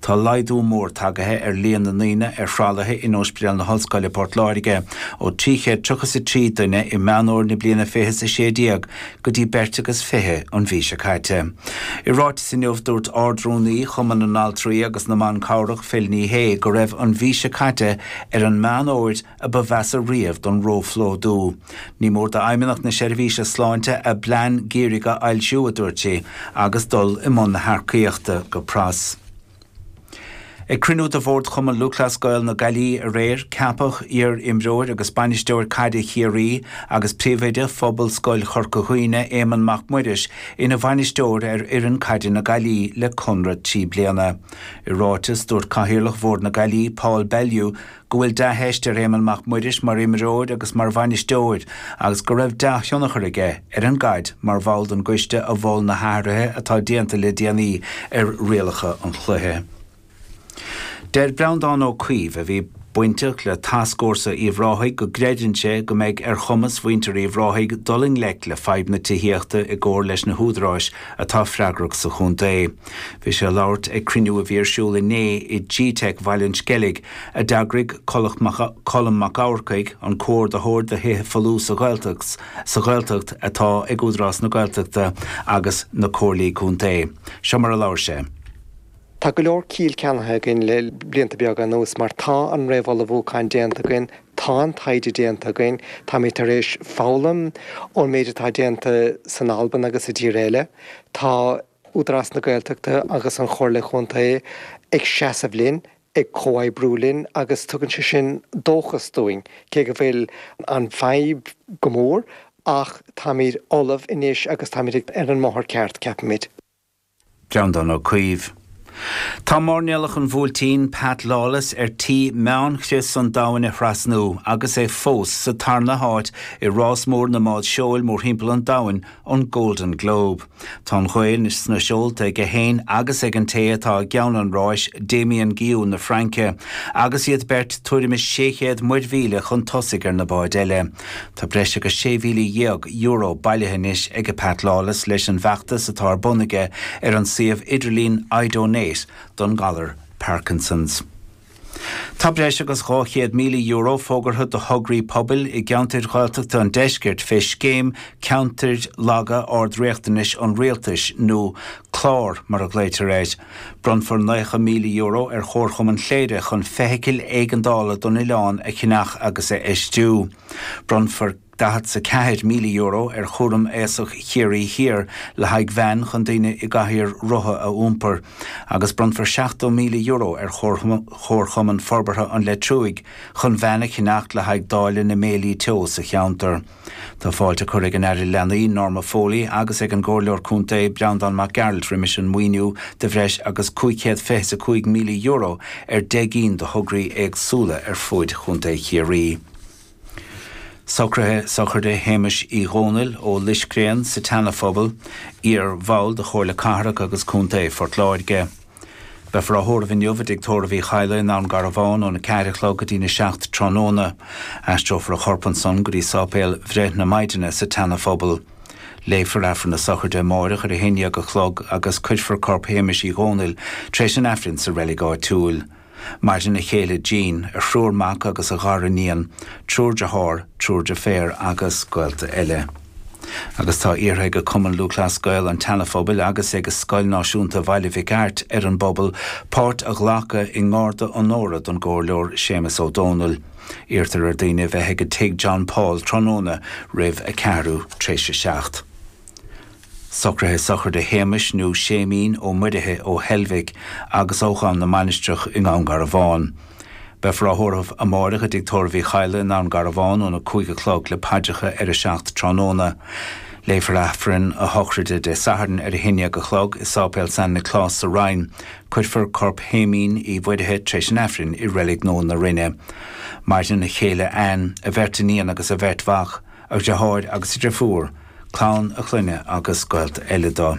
Tá laghdú mór tagaithe ar líon na ndaoine ar thralaithe in Ospidéal na hOllscoile Port Láirge ó trí chéad triocha is a trí duine i Meán Fómhair na bliana fiche sé déag go dtí beirt agus fiche an mhí seo caite. I ráiteas inniu dúirt Ard-Rúnaí Chumann na nAltraí agus na mBan Cabhrach Phil Ní Sheaghdha go raibh an mhí seo caite ar an Meán Fómhair a ba mheasa riamh don róphlódú. Ní mór d'Fheidhmeannacht na Seirbhíse Sláinte a bplean geimhridh a fhoilsiú, a dúirt sí, agus dul i mbun na hearcaíochta go pras. Ag cruinniú de Bhord Chumann Lúthchleas Gael na Gaillimhe aréir, ceapadh iar-imreoir agus bainisteoir caide Chiarraí agus príomhoide Phobalscoil Chorca Dhuibhne, Éamonn Mac Muiris, ina bhainisteoir ar fhoireann caide na Gaillimhe le conradh trí bliana. I ráiteas, dúirt Cathaoirleach Bhord na Gaillimhe, Paul Bellew, go bhfuil dea-theist ar Éamonn Mac Muiris mar imreoir agus mar bhainisteoir agus go raibh dea-thionchar aige ar an gcaid mar bhall den gcoiste a mhol na hathruithe atá déanta le déanaí ar rialacha an chluiche. Deir Breandán Ó Caoimh, a bhí bainteach le Tascfhórsa Uíbh Ráthaigh, go gcreideann sé go mbeidh ar chumas mhuintir Uíbh Ráthaigh dul i ngleic le fadhb na tithíochta i gcomhar leis na húdaráis atá freagrach sa chontae. Bhí sé ag labhairt ag cruinniú a bhí ar siúl inné i G-Teic Bhaile an Sceilg a d'eagraigh Colm Mac Eachmharcaigh, an comhordaitheoir do thithe folmha sa Ghaeltacht atá ag Údarás na Gaeltachta agus na Comhairlí Contae. Seo mar a labhair sé. Tá go leor ciall ceannaithe againn le blianta beaga anuas mar tá an réamhullmhúchán déanta againn, tá an taighde déanta againn, táimid tar éis foghlaim ón méid atá déanta san Albain agus i dtíortha eile. Tá Údarás na Gaeltachta agus an Chomhairle Chontae ag seasamh linn. ag comhoibriú linn agus tugann sé sin dóchas dúinn, cé go bhfuil an fadhb go mór ach táimid ullamh anois agus táimid ar an mbóthar ceart, ceapaimid. Breandán Ó Caoimh. Tá mairnéalach an Bhuailtín, Pat Lawless, ar tí meánchrios an domhain a thrasnú agus é fós sa tarna háit i rás mór na mbád seoil mórthimpeall an domhain, an Golden Globe. Tá an ghaoth anois sna seolta aige féin agus ag an té atá i gceann an ráis, Damien Guillou na Fraince, agus iad beirt tuairim is 600 muirmhíle chun tosaigh ar na báid eile. Tá breis agus €16,000 bailithe anois ag Pat Lawless leis an bhfeachtas atá ar bun aige ar an suíomh idirlín iDonate don ngalar Parkinsons. Tá breis agus €200,000 fógartha do thograí pobail i gceantair Ghaeltachta an Deiscirt fé scéim 'Ceantair Laga Ard-Riachtanais' an Rialtais, nó clár, mar a ghlaoitear air. Bronnfar €90,000 ar Chomharchumann Chléire chun feithicil éigeandála don oileán a cheannach agus a fheistiú. Bronnfar. €44,000 ar Chúram Aosach Chiarraí Thiar le haghaidh veain chun daoine i gcathaoir rotha a iompar, agus bronnfar €70,000 ar Chomharchumann Forbartha an Leitriúigh chun veain a cheannacht le haghaidh dáileadh na mbéilí teo sa cheantar. Tá fáilte curtha ag an Aire Leanaí, Norma Foley, agus ag an gComhairleoir Contae, Breandán Mac Gearailt roimis an maoiniú de bhreis agus €525,000 ar 10 gcinn de thograí éagsúla ar fuaid Chontae Chiarraí. Socruithe sochraide Shéamais Uí Dhomhnaill ó Loiscreán sa tSeanaphobal, iar-bhall de Chomhairle Cathrach agus Contae Phort Láirge. Beifear á thórramh inniu i dTig Tórraimh Uí Chadhla i nDún Garbhán óna ceathair a chlog go dtína seacht tráthnóna. Aistreofar a chorp ansan go dtí sáipéal Bhreith na Maighdine sa tSeanaphobal. Léifear Aifreann na Sochraide amáireach ar a haon dhéag a chlog agus cuirfear corp Shéamais Uí Dhomhnaill tar éis an Aifrinn sa reilig áitiúil. Maireann a chéile Jean, a thriúr mac agus a ghariníon, triúr dearthár, triúr deirféar agus gaolta eile. Agus tá iarrtha ag Cumann Lúthchleas Gael an tSeanaphobail agus ag Scoil Náisiúnta Bhaile Mhic Airt ar an bpobal páirt a ghlacadh i ngarda onóra don gComhairleoir Séamus Ó Domhnaill. Iarrtar ar dhaoine a bheith ag Tigh John Paul tráthnóna roimh a ceathrú tréis a seacht. Socruithe Sochraide Shéamais nó Séimín Ó Muirithe ó Heilbhic agus ó Dhún na Mainistreach i nDún Garbhán. Beifear á thórramh amáireach i dtigh tórraimh Uí Chadhla i nDún Garbhán óna cúig a chlog le paidreacha ar a seacht tráthnóna. Léifear Aifreann a Shochraide Dé Sathairn ar a haon dhéag a chlog i Sáipéal San Nioclás sa Rinn. Cuirfear corp Shéimín Uí Mhuirithe tréis an Aifrinn i Reilig Nua na Rinne. Maireann a chéile Anne, a bheirt iníon agus a bheirt mhac. a dheartháir agus a dheirfiúr, clann a chloinne agus gaolta eile dó.